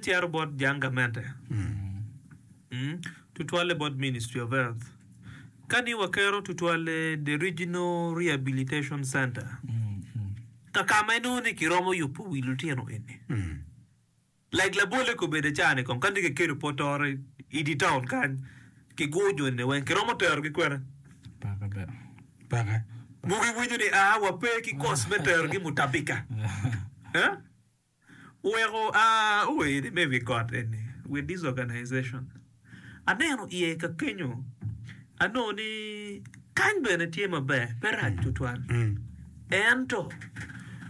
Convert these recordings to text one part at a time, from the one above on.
Cito bot jang gamente, tutwalle bot Ministry of Health. Ka ni wakero tutwalle the Regional Rehabilitation Center, kaka ma inongo ni kiromo yubo wi lutino eni. Like labolle kobedo aca ni kong ka ni kiketo Port Ore i dye taun kany, kiguro joni ni weng, kiromo terogi kwene? Paka bene. Paka. Mogo iwinyo ni aa, wape ki cost me terogi Mutabika. Eh? Oweko a oene me wi got eni with this organization. Aneno iye ka kenyo, anongo ni kany bene tye maber, pe rac tutwal. Ento,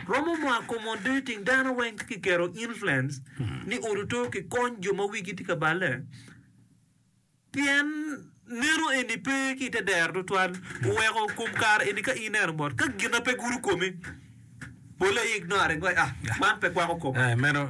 romo mo accommodating dano weng ci kiketo influence ni oruto kikony jo ma wigi tye ka balle. Pien neno eni pe ki i te dero tutwal, oweko kom kare eni ka ineno mot, ka gin na pe gudo komi, pole aye ignored wai, ah, man pe kwako koma. Eh, meno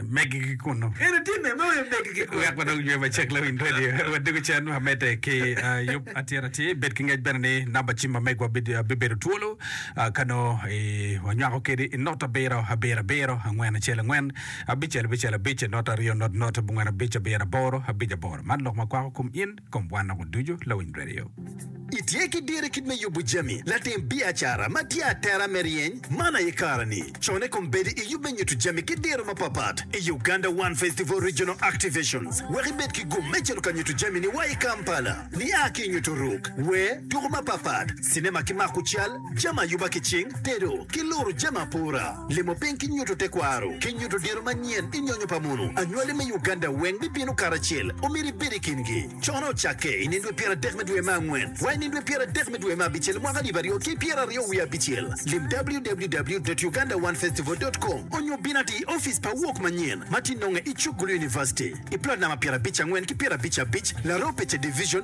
megigi kunnu. Eni timme me weyo megigi kunnu. Wek wadong jwe macek lawiny redio, wadiko cen ma medde ki ah, yub atir atir. Bed ki ngec bene ni namba cim ma megwa bi- bibedo twolo ah, ka nongo i- wanywako kedi i nota abiro, abiro abiro, angwen acel angwen. Abicel, abicel, abic, not aryo, not, not, abongwen, abic, abiro, aboro, abic, aboro. Man lok ma kwako kom in, kom wan nongo ducu, Lawiny Radio. Itye ki dir i kit me yubo jami, latim biacara ma tye atera me ryeny man aye kare-ni. Con i kom bedo i yub me nyuto jami ki diro mapatpat i Uganda One Festival Regional Activations wek ibed ki gum me cito ka nyuto jami-ni wa i Kampala. Nia ki i nyuto ruk, wer, tuko mapatpat, cinema ki mako cal, jami ayuba ki cing, tedo, ki luru jami apura, limo piny ki nyuto tekwaro, ki nyuto diro manyen i nyonyo pa munu. Anywali me Uganda weng bibino karacel, omyero ibed i kingi. Cone ocakke i nindwe pyer adek me dwe me angwen wa i nindwe pyer adek me dwe me abicel mwaka alip aryo ki pyer aryo wiye abicel. Lim www.ugandaonefestival.com onyo bin ati i ofice pa Wok Manyen ma tye nonge i Chuk Gulu University i plot namba pyerabic angwen ki pyerabic abic, Laropice Division,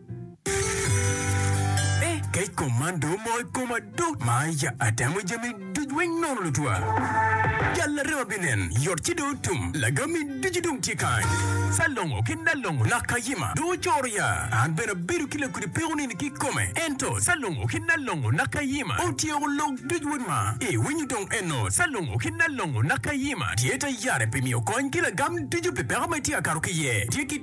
Eh, kec kom man dong omoko i koma dok ma ya atemo jami duc weng nono lutwa. Jal larema binen, yot ci dong otum, lagami ducu dong tye kany. Salongo ki Nalongo lak kayima dong ocoro ya, an bene abedo ki lakudi peko nini ki kome. Ento Salongo ki Nalongo lak kayima otyeko lok duc wod ma, i winyo dong eno Salongo ki Nalongo lak kayima tye ta yare pi miyo kony ki lagam ducu pi peko ma itye ka kato ki iye. Tye ki.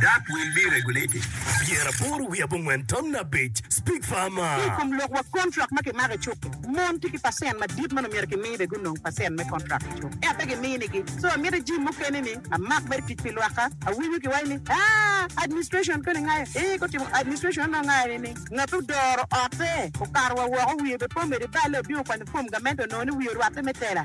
Dak wil me regulate pyera aboro wiye abongwen tamna abic, Speak Farmer. Ki i kom lok wa kontrak ma kimako i cuk-ki, mon tye ki pacent madit ma nongo myero kimi bene gunong pacent me kontrak i cuk, ento pe giminigi. So amito jim mukene ni amak mere tic pi lwakka. Awinyo kiwaco ni, Aa, administration koni ngayo? Ee, gutimo administration onongo ngayo ni ni ngat ma odoro otte okato wa woko wiye bepomede balle obino kwanyo fom gamente onongo ni wiye orwatte me tela.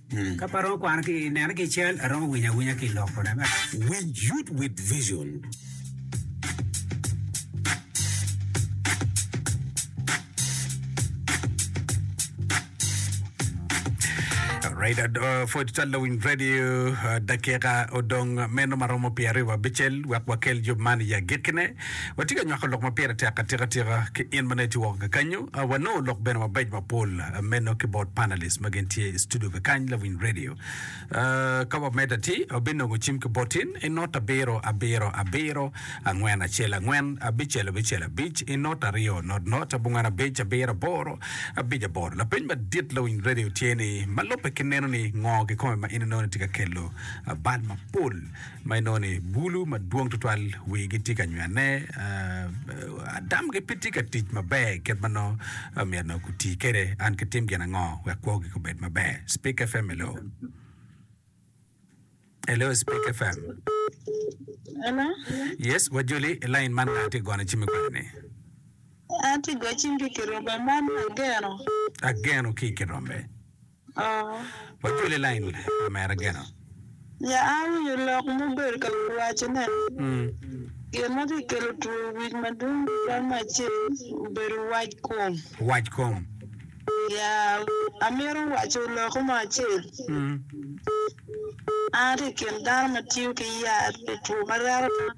Ka pe aromo kwano ki neno ki i cal, aromo winyo awinya ki i lokone. We youth with vision. Right, uh, 42 Lawiny Radio, uh, dakika odong meno maromo pyeraryo wabicel wek wakel yub man i agikkine. Watye ka nywako lok ma pire tek atikatika ki in ma nongo itye woko kakanyo. Wanongo lok bene mabeco mapol meno ki bot panelists ma gin tye i studio kakany lawiny radio. Ka wamed ati, wabinongo cim ki botin i not abiro abiro abiro angwen acel angwen abicel abicel abic i not aryo not not abongwen abic abiro aboro abic aboro. Lapeny madit lawiny radio tye ni, ma lubbe ki neno ni ngo kikome ma in inongo ni tye ka kelo bal mapol ma inongo ni bulu madwong tutwal wigi tye ka nywene, adamgi pe tye ka tic maber kit ma nongo myero nongo guti kwede. An kitim gin ango wek kwogi kubed maber? Spik FM hello. Hello Spik FM. Hello? Yes, wajoli i lain man nga tye ka gono cimi kwede-ni? An tye ka goyo cim ki i Kirombe man Ageno. Ageno ki i Kirombe. Ya awinyo lok ma obedo ka wacone, Gin ma tye ka kelo two wic madwong tutwal me acel obedo wac kom. Ya amito waco lokke mo acel, An atye i kin dano ma tiyo ki yat pi two ma reko dano.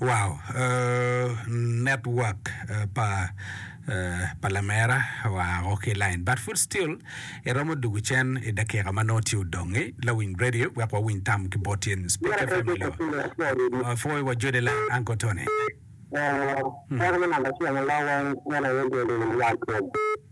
Wow, network pa pa lamera oa o ki line but food still iromo dugu cen i dakika ma nongo tye odongi lawiny radio wek wawiny tam ki bot in Spike FM Lwa. Apwoyo wa Jode la Uncle Tony. Dako me namba acel ma lawa en en aye Jode Lwakod.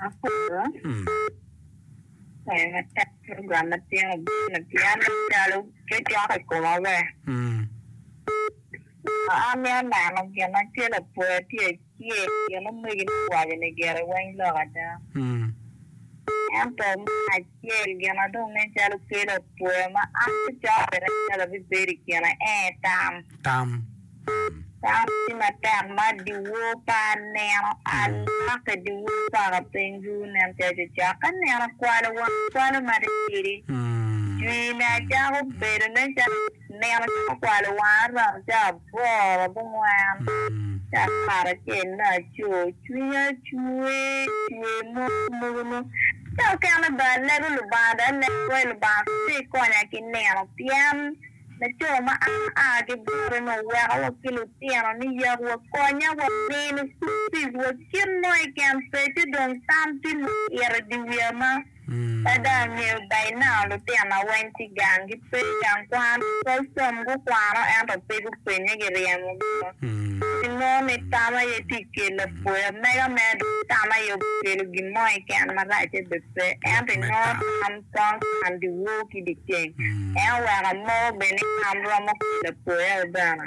Aporo program ma tino bene pien calo cocok i koma be. Amito neno gin acel apwoya tye acel gin omegine owaco-ni gire weng lok ada. Ento me Tye i gin adong nen calo kelo atwoya ma an acamo bene acalo abibedo i kine ee tam. Tam. Tam tye matek ma dyewor pa aneno a lokke dyewor paka piny duru nen calo cecek ka neno kwalo wang kwalo ma tye tidi jwine acako bedo nen calo Nino ci gukwalo wanga rom ca aboro abongwen ca karacel laco. Cwinya cwer cwer mogo mogo nwo ca okene bene alego Lubanga dok alego kwo i Lubanga kong pe ikonya ki nino pien laco ma an aa ki bote ni oweko wa ki lutino ni yak wa konya wa mini school fees wa kit mo keken peco dong tam tye ma ito i di wiya ma Ka dong angeyo bainao lutina weng tye gang gipe i gang kwan, pol som gukwano ento pe gupwennye giryemo gino. Pi nongo ni tam aye tye i kel lapoya mega mere dok tam aye obikelo gin mo keken marac aye bed pe ento i nongo tam twang kwan dyewor ki dyeceng en oweko amogo bed ni tam romo kel lapoya aye bene.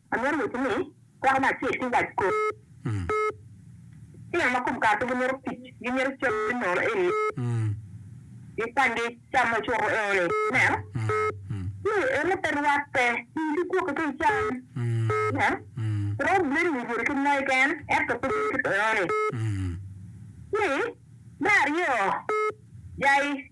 Amyero woti ni kwako me acel ki wac kor tino ma kom kare pe gimito tic, gimito cam me nono eni, gikwany cam ma ocuro eo-ni. Ineno? Ni eno pe rwatte tic ki kwok keken cam. Ineno? Romo bedo i wi bwodi kit mo keken, ento pe bedo kit eo-ni. Ni, me aryo, jai.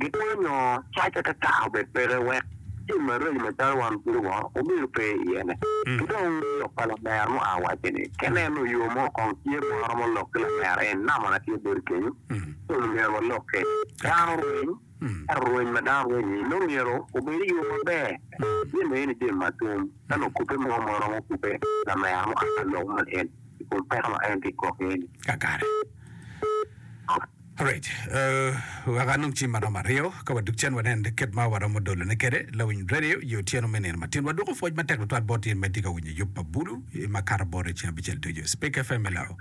Gitwero nyo cace ka kare obed peke wek tim maraco macalo wan kulu wa obedo pe iyene. Ki dong lok pa lamer mua waco ni, ka ineno yo mo kong tye ma waromo lok ki lamer en, namana tye boti kenyo, kong myero walokke. Dano rweny, ento rweny ma dano rweny-nyi nongo myero obed i yo maber, jami ma en itimo atum. Ka nongo kubbe mo ma romo kubbe lamer mua pa lok man en, i kom peko ma en tye ka gwokki-ni. Alright, uh, wek anong ci ma romo aryo ka wadug cen wanen kit ma waromo dolone kwede lawiny radio i otyeno me nino matin. Wadwoko pwoc matek tutwal bot in ma itye ka winyo yub pa Bulu i ma kato bot i ceng abicel ducu. Speke FM, hello.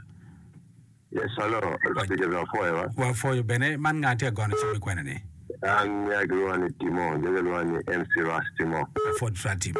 Yes, hello. Wa- Speaker of Foyer, wa? Wapwoyo bene, man nga tye ka gono cim i kwena-ni? An ya kilwongo ni Timo, jo kilwongo ni MC Ras Timo. Wapwod Rat Timo.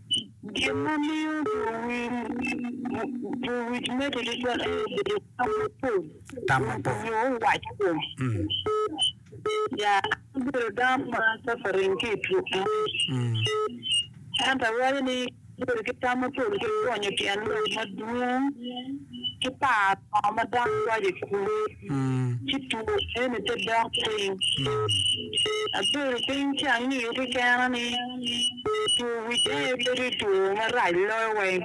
Gin ma miyo luwic medde tutwal aye bedo tam mapol nyo waco kom. Ya, an abedo dano ma acato rem ki i tuk man. Ento awaco ni bedo ki tam mapol ki gonyo tyen lok madwong ki paro lok ma dano waco i kulu. ci tugo eni te dok piny. Abedo piny ci angiyo kekena ni two wic aye pe tye two marac loyo wa en.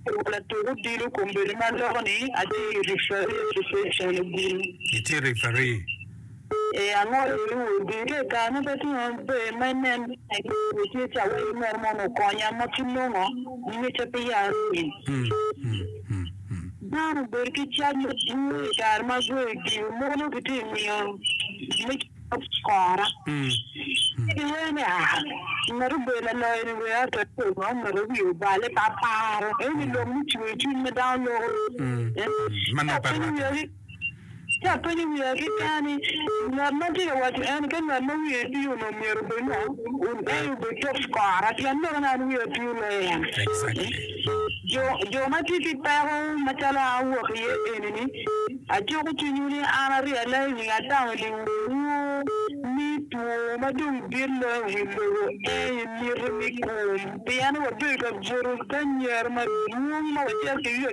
Latuk odilo kombeddi ma loko ni atye i referee association i gudi. Itye referee? Ee, angoliwu, gin ka ikare-nu pe tye ma pe me nen tek nyo tye cawa i nino mono okonya ma ki nongo ngecca pe ya runi. Dano obedo ki cac madwong i kare ma gwe odilo mono ki tye miyo me cop kora. Ki wee ni a, ngat obedo laloyo ni wee ato tye ma omito wiye obale pa paro, eni lok me cwer cwiny ma dano loko. Manaka rwate. Ci apenyo wiya keken ni, 'Ngat ma atye ka waco eni ka ngat ma wiye tir onongo myero obed ngo? Ey obed top scora pien meno an wiya tir loyo en. Jo ma tye ki peko macalo an awok iye eni-ni, acuko cwinywu ni an aryelle i nying Adamu ni wunwo ni two ma dong dit loyo i wi lobo eni miti me kum, pien wabedo ka buto ki anyira madwong ma wacito ki yo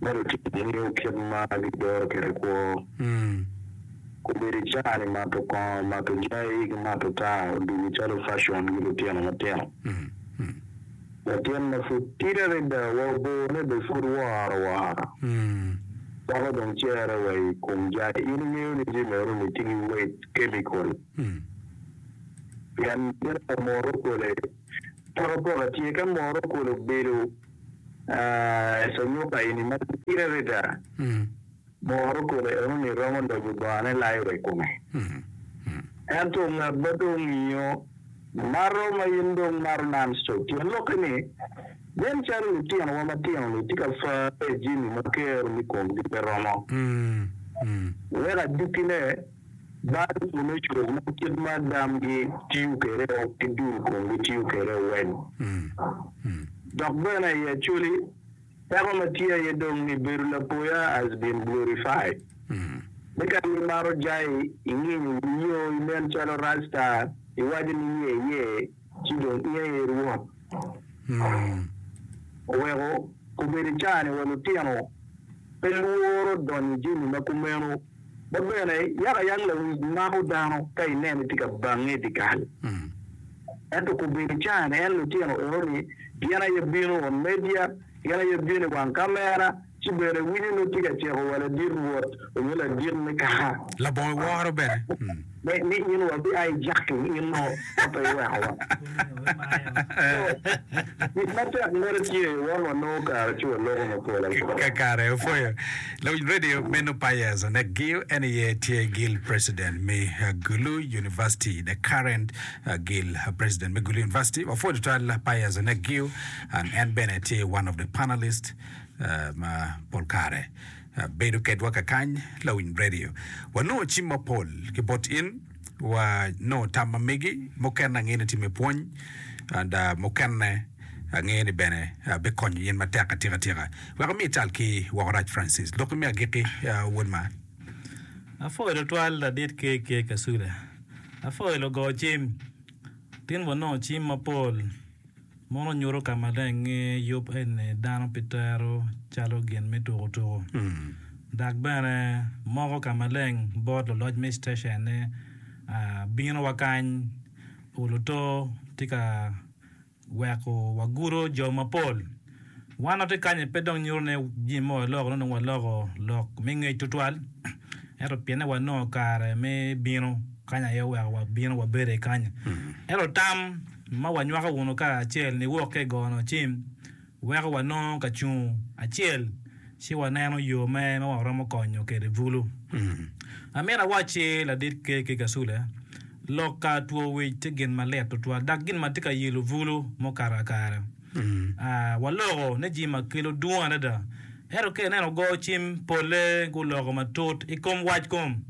me lutini nio kit ma gidoro kwede kwo. Obedo i caa-ni mato kongo, mato jai, ki mato taa odugo calo facon ki lutino matino. Latin ma pud tidi adada wa obone bene pud woro woro dako dong cere wa i kom jai. In ingeyo ni jami aroni tye ki weight, chemical, pien gin pa moto kole Pokopoko tye ka moro kulu bedo i canyuka eni ma pire adada. Moro kulu enoni romo loyo bongane layo wa i kome. Ento ngat ma dong ngiyo mato ma in dong imato non-stop, tyen lokke ni, nen calo litinowa matino-ni tye ka farre i jami ma kero ni komgi pe romo, wek adukkine. Dano ducu ma kit ma damgi tiyo kwede ki dul komgi tiyo kwede weng. Dok bene i Acholi, peko ma tye aye dong ni bedo lapoya has been glorified. Ni ka imaro jai, inginyo wiyo, inen calo rasta, iwaco ni ye ye, ci dong in aye rwot. Oweko kobedi ca-ni wa lutino pe lworo donyo i jami ma kumeno. Bot bene, yakayang lawic mako dano ka inene tye ka bange i dyekal. Ento kobedo cane, en lutino enoni gin aye bino on media, gin aye bino i wang kamera, ci bene winyo nongo tye ka ciko wa ladit Rwot onyo ladit me kaka. Labongo iworo bene. Be mit nyo wabia i jaki in mo ka pe iwekowa? Mit matek mere tye won wanongo kare ci waloko ma pol aye. Kakare opwoyo lawiny radio me Nu Payers onek giu en aye tye Gil President me Gulu University the current Gil President me Gulu University wapwo tutwal Payers onek giu and en bene tye one of the panelist ma pol kare Bedo kedwa kakany, Lawiny Radio, wanongo cim mapol ki bot in, wa nongo tam ma megi, mukene angeyo ni tye me pwony and mukene angeyo ni bene bikonyo yen matek atika tika. Wek omi ital ki woko rac Francis, lokki me agiki wod ma. Apwoyo tutwal ladit KK Kasule. Apwoyo lugo cim. Tin wanongo cim mapol. Mono nyuto ka maleng ni yub eni dano pe tero calo gin me tuku tuku. Dok bene, moko ka maleng bot luloc me steshen ni, Bino wa kany, olo to tye ka weko wagudo jo mapol. Wan watye kany-ni pe dong nyuto ni jami mogo oloko, nongo waloko lok me ngec tutwal, ento pienne wanongo kare me bino kany aye oweko wabino wabedo iye kany-ni. Ento tam. ma wanywako wunu kacel niwok ka i gono cim, weko wanongo ka cungo acel ci waneno yo me ma waromo konyo kwede bulu. Amito awacci ladit kekki Kasule, lok ka two wic tye gin malit tutwal dok gin ma tye ka yilo bulu mukato kakare. Waloko ni jami ma kelo dwong adada, ento ka ineno go cim polle guloko matut i kom wac kom.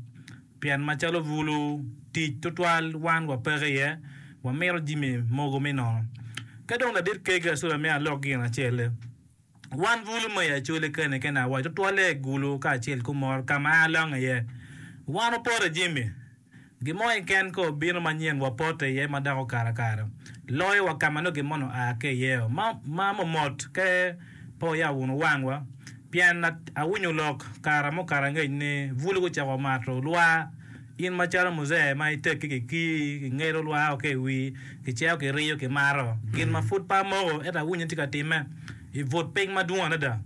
Pien macalo bulu tic tutwal wan wapeke iye, wamito jami mogo me nono. Ka dong ladit kegi acola me alok gin acel-le, wan bulu ma i acoli kene kene awaco tutwalle i gulu kacel kumor ka ma alonge iye. Wan opoto i jami. Gin mo keken ka obino manyen wapote iye ma dako karakara loyo wa ka ma nongo gin moni oa ki iye-o, ma, ma momot, ka, Pe wuya wunu wangwa, pien awinyo lok kara mukato angec ni bulu gucako mato lwar. In macalo muzee ma itekki kikii, kingelo lwar o ki i wii, kiceo, kiriyo, kimato. Gin ma pud pe amoko, ento awinyo ni tye ka timme, ibut piny madwong adada.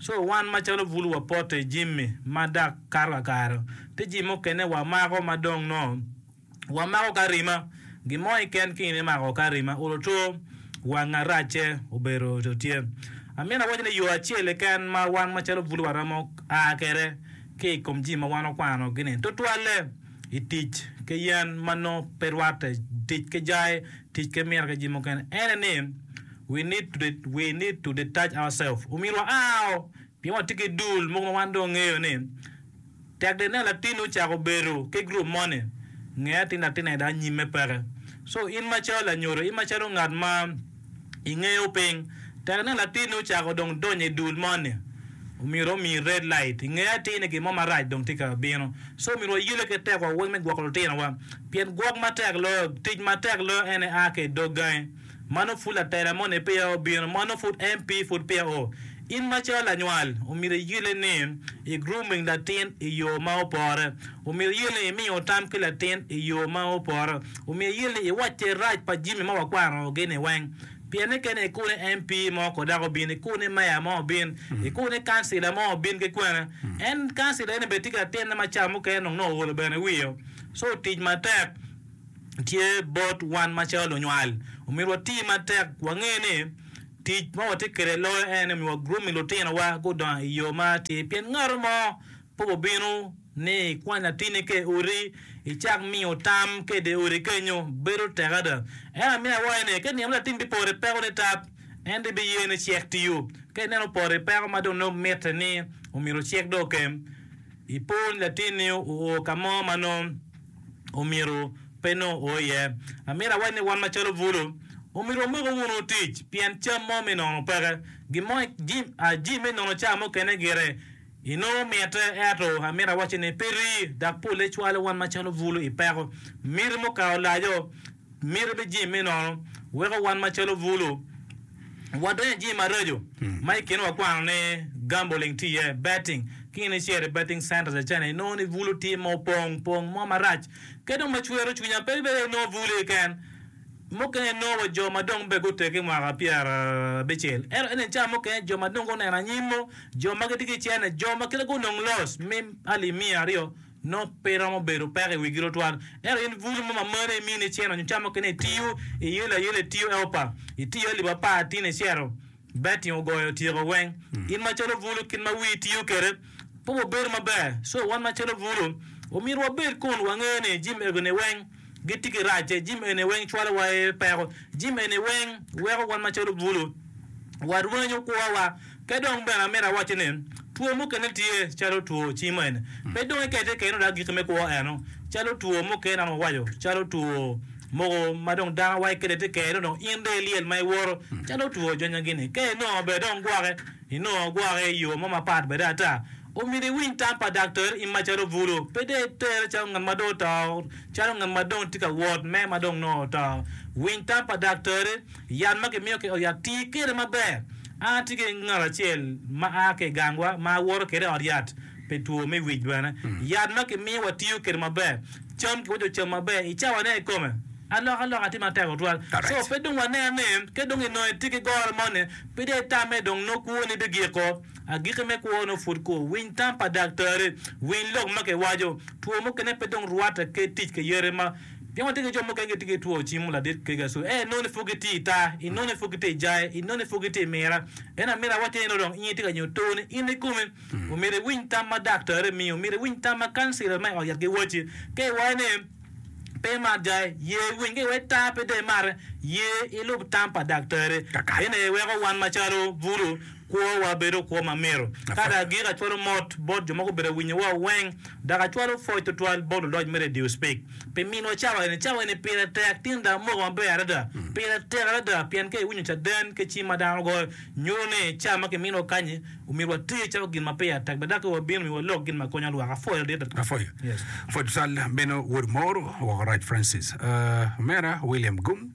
Co wan macalo bulu wapote jimmi ma dak kato kakare, te jimmi mukene wamako ma dong nongo wamako ka rima. Gin mo keken ki in imako ka rima, olo two wang aracce obedo co tye. Amyero awaci ni yo acel keken ma wan macalo bul waromo a kwede ki i kom jami ma wan wakwano gi ni, tutwalle i tic ki yen ma nongo pe rwatte, tic ki jai, tic ki mira ki jami mukene. Ene ni, we need to we need to detach ourselves. Omyero waa o pien watye ki dul mogo ma wan dong wangeyo ni, Tek dong ineno latinni ocako bedo ki gurup moni, nge atin latin aye dok nyimme peke. Co in macalo lanyodo, in macalo ngat ma ingeyo piny, tek ineno latinni ocako dong donyo i dul moni, myero omiyi red light. Inge atir ni gin mo marac dong tye ka bino. Co myero wayelle ki tekwa weng me gwoko lutinowa, pien gwok matek loyo, tic matek loyo en aye a ki i dog gangi. Mano pud latela mo ni peya obino, mano pud MP pud peya o. In macalo lanywal, omyero iyelle ni i grooming latin i yo ma opore. Omyero iyelle ni imiyo tam ki latin i yo ma opore. Omyero iyelle ni iwacce rac pa jimi ma wakwano gi ni weng. Pien ni kene ikobo ni MP mo ko dako obin, ikobo ni Mayor mo obin, ikobo ni Councilor mo obin ki kwene. En Councilor eni bene tye ki latinne ma cawa mukene nongo nongo oolo bene wiye o. So tic matek. tye bot wan macalo lunywal. Omyero wati matek wange ni tic ma watye kwede loyo en ni miwa gurup me lutinowa gudongo i yo ma atir. Pien ngat mo pe obibino ni ikwany latinni ka i odi, icak miyo tam ka i dye odi kenyo. Bedo tek ada. Ento amiyo awaci ni, ka inino ni latinni bipoto i peko nitat, en dong ibiye ni cek tiyo. Ka ineno opoto i peko ma dong nongo mitte ni omyero cek dong okem, ipor ni latinni oo ka mo ma nongo omyero pe nongo oo iye. Amito awac ni wan macalo bulu, omyero wamoko wunu otic pien cam mo me nono peke. Gin mo jami me nono ca mukene gire inongo mitte, ento amito awacci ni pe rii, dok polle cwalo wan macalo bulu i peko. Miti mukato laco. Miti bed jami me nono weko wan macalo bulu wadonyo i jami maraco ma i kine wakwano ni gambling tye iye, betting. Ki in icito i betting centers acel-li inongo ni bulu tye ma opong pong mo marac. Kadi dong ma cwero cwinya pe ibedo inongo bulu keken, mukene inongo wa jo ma dong bene gutegi mwaka pyerabicel. Ento eni cawa mukene jo ma dong guneno anyim-mu, jo ma gitye ki cene, jo ma kite gunong loss me alimia aryo, Nongo pe iromo bedo peko i wigi tutwal. Ento in bulu mo ma mane imini iceno nyo camo kene itiyo iye layel itiyo Eopa, itiyo alip apar tin icero betting ogoyo otyeko weng. In macalo bulu kit ma wii tiyo kede pe obedo maber so wan macalo bulu omyero wabed kun wange ni jim egoni weng. gitye ki racce. Jami eni weng cwalowa i peko. Jami eni weng weko wan macalo bulu warwenyo kwowa. Pe dong bene amito awacci ni two mukene tye calo two cimen, pe dong ikette keken odok agikki me kwo eno. Calo two mukene an wawaco calo two mogo ma dong dano awaco kede te kene dong in dong ilyel ma iwoto calo two jonyagi-ni. Ka inongo bene dong gwoke. Inongo gwoke i yo mo mapat bene ata. Omyero iwiny tam pa daktere in macalo bulu, pe dong itere calo ngat ma dong oto, calo ngat ma dong tye ka wot me ma dong nongo oto. Winy tam pa daktere. Yat ma kimiyo ki i ot yat, ti kwede maber. An atye ki ngat acel ma a ki i gangwa ma awoto kwede i ot yat pi two me wic bene. Yat ma kimiyo watiyo kwede maber. Cam kiwinyo ocamo maber, i cawa ne i kome. Alokaloka tye matek tutwal. So pe dong wanene ni ka dong inongo itye ki goro moni, Pe dong itamme dong nongo kwoni bigiko. Agikki me kwo nongo pud ko. Winy tam pa daktari. Winy lok ma kiwaco. Two mukene pe dong rwatte ki tic ki yati ma pien watye ki jo mukene gitye ki two cimo ladit kega so ee nongo ni pud gitye i taa, i nongo ni pud gitye i jaye, i nongo ni pud gitye i mira. Ento amirawa tye ni nongo dong in itye ka nyo toni in kikomi. Omyero iwiny tam ma daktari miyo. Omyero iwiny tam ma kancila ma i ot yat giwacci. Ka iwaco ni. pe imatga, ye iwiny ka iwec taa pe dong imate, ye ilub tam pa daktari. Ene weko wan macalo bulu, kwowa bedo kwo ma mito. Ka dok agik acwalo mot bot jo ma gubedo ka winyowa weng, dok acwalo pwoc twatwal bot luloc me redio Speak pi minwa cawa eni. Cawa eni pire tek tin dok moko maber adada. Pire tek adada pien ka iwinyo caden ki cim ma dano goyo, nyuto ni ca ma kiminiwa kanyi, Omyero water calo gin ma peya tek, bed dok ka wabino myero walok gin ma konyo lwak. Apwoyo adita. Apwoyo. Pwod cal meno wod mor woko rac Francis. Omera William Gum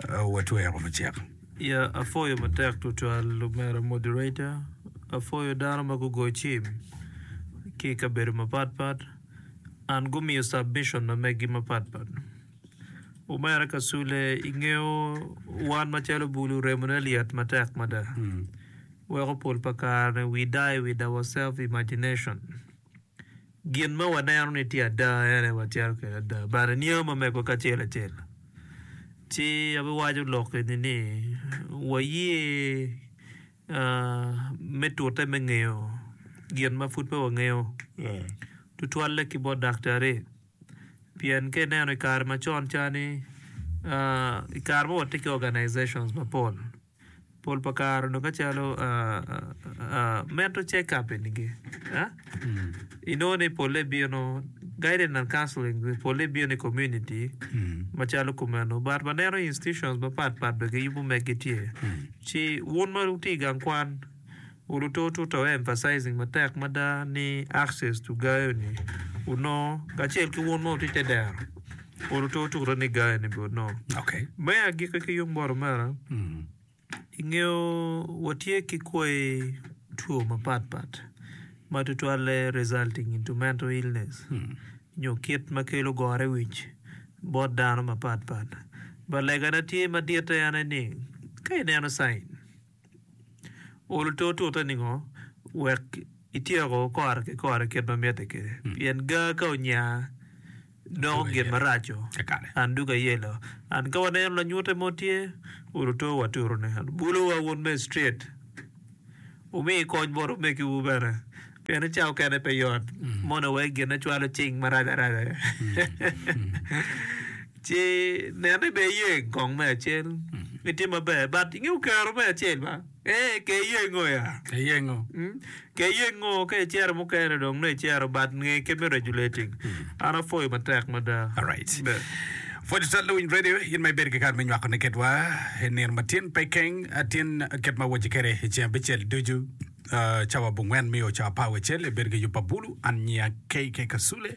watwero me cek. Ya apwoyo matek twatwal omera moderator. Apwoyo dano ma gugoyo cim ki i kabedo mapat pat and gumiyo submission na megi mapat pat. Omera Kasule, ingeyo wan macalo bulu remone lyet matek mada. Weko pol pa kare-ni we die with our self imagination. Gin ma waneno ni tye ada en aye watito kwede ada bade niango ma megowa kacel acel. Ci abiwaco lok eni ni waye me tute me ngeyo gin ma pud pe wangeyo tutwalle ki bot daktari. Pien ka ineno i kare macon cani, i kare ma watye ki organizations mapol, pol pa kare onongo ka calo mental check up eni gi inongo ni pole bino guidance and counselling pole bino i community macalo kumeno but waneno institutions mapat pat bene giyubo megi tye ci wun ma wutye i gang kwan Uruto tuta wu emphasizing matek mada ni access to gayo ni onongo kacel ki wun ma wutye te dero uruto tuta ni gayo ni be onongo. Okay. Me agikki ki yung bot omera, ingeyo watye ki kwai two mapat pat ma tutwalle resulting into mental illness nyo kit ma kelo gore wic bot dano mapat pat. But legana tye maditte en aye ni ka ineno sign, Olo te otute ningo wek ityeko kore ki kore kit ma mitte kwede? Pien gaa ka onya, doko gin maraco, and dog ayelo. And ka waneno lanyute mo tye, olo te waturu ne. And bulowa wun me street, wumi kony bot omegiwu bene. Pien ni cawo kene pe yot, mono wai gin ne cwalo cing marac araca. Ci nen ni be iye kong me acel me tye maber but ingeyo kero me acel ba ee ke iye ngo ya Ke iye ngo? Mm, ke iye ngo ka icero mukene dong nongo icero but nge ke me regulating an apwoyo matek mada Alright. Be. Pwod ital lawiny radio in ma ibedo ki kare me nywako ne kedwa i nino ma tin pe keng atin kit ma awoce kede i ceng abicel ducu ah, cawa bungwen mio cawa pa awecel ibedo ki yub pa bulu an nyiya KK Kasule